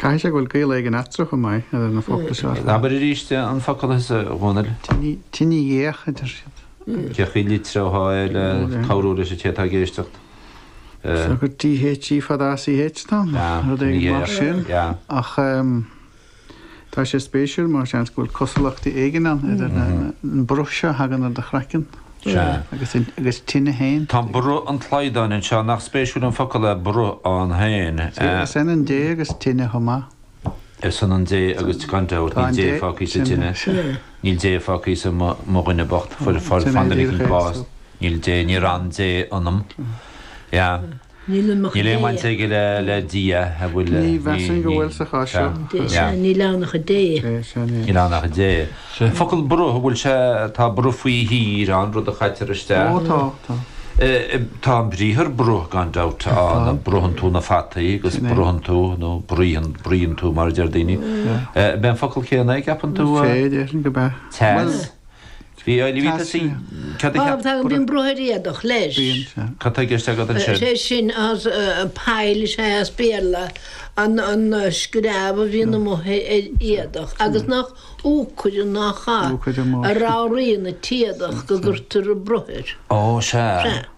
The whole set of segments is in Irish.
Caithfidh sé go bhfuil gaol éigin eatarthu chomh maith idir na focla seo ar fad. Abair arís an focal thusa, a Dhomhnaill. Tinidh Dhéach a deir siad. Cén chaoi a litreofá é le cabhrú leis an té atá ag éisteacht. Seo gur dh í fada as ch ann, nó rud éigin mar sin, ach Tá sé spéisiúil mar seans go bhfuil cosúlachtaí éigin ann idir an bruth seo a thagann ar do chraiceann agus tine féin. Tá bruth an tslaghdáin anseo, nach spéisiúil an focal é bruth ann féin. Sea, is ionann dé agus tine chomh maith. Is ionann dé agus, gan dabht, níl dé fágtha sa tine, níl dé fágtha sa mo dhuine bocht, fuair an fáinne fliuch an bás, níl dé, níor fhan dé ionam. Sea. Níl aon bhaint aige le Dia, an bhfuil? Ní mheasaim go bhfuil sa chás seo. Sea, níl ann ach an dé. Sea, sea, níl. Níl ann ach an dé. An focal bruth, an bhfuil sé, tá bruth faoi thír ann, rud a chaitear isteach. Ó, tá, tá. Tá an briathar bruth, gan dabht, ann, bruthann tú na fataí agus bruthann tú, nó bruíonn, bruíonn tú mar a deir daoine. An mbeadh an focal céanna, an gceapann tú? Sea, déarfainn go mbeadh. Sea. Bhí Ailbhe Tasca. Tasca. Cad a cheap. Tá bíonn bruth ar éadach leis. Bíonn, sea. Cad tá i gceist agat ansin? Sé sin as pile is ea as Béarla an screamh a bhíonn amuigh ar éadach agus nach úcaire nach ea a ramhraíonn an t-éadach go gcuirtear bruth air. Ó, sea.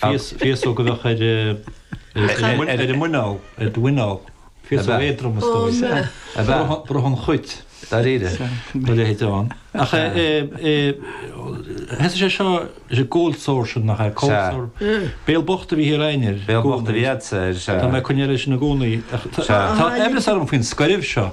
Féasóg a bheadh ar a muineál, ar do mhuineál. Féasóg éadrom is dóigh. Sea. A bheadh. Bruth an chuit. Dáiríre. Sea. A leithéid ann. Ach thosaigh sé seo, is é cold sores sin nach é? Sea. Cold sores. Béal bocht a bhí ar éinne ar an gcúrsa. Béal bocht a bhí ortsa ar. Tá mé ag coinneáil ar sin i gcónaí. Sea. Tá aimhreas orm faoin scoirbh seo.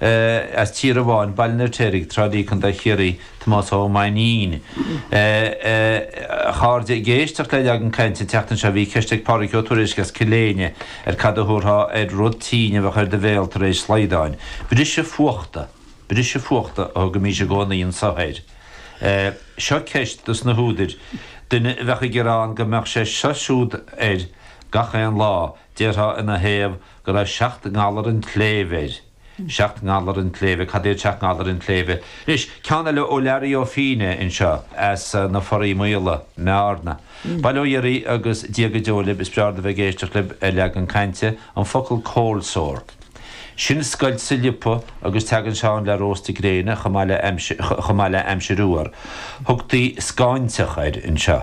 as Tír Amháin, Baile na Rtéirigh, Trá Lí, Co. Chiarraí, Tomás Ó Mainnín. A chairde ag éisteacht le leagan cainte an tseachtain seo bhí ceist ag Pádraic Ó Tuairisg as Cill Éinne ar cad a thabharfá ar rud tinn a bheadh ar do bhéal tar éis slaghdáin. Briseadh fuachta. Briseadh fuachta a thugaimís i gcónaí anso air. Seo ceist dos na húdair, duine a bheadh ag gearán go mbeadh sé seo siúd air gach aon lá, Déarfá ina thaobh go raibh seacht ngalar an tsléibhe air. Seacht ngalar an tsléibhe, cad iad seacht ngalar an tsléibhe? Anois, ceann eile ó Learaí Ó Fínneadha anseo as na Foraí Maola i mBearna. Bail ó Dhia oraibh agus Dia go deo libh, is breá liom a bheith ag éisteacht libh ar Leagan Cainte, an focal cold sore. Sin scoilt sa liopa agus teagann sé ann le róstadh gréine chomh maith le chomh maith le aimsir fhuar. Thugtaí scáinteach air anseo.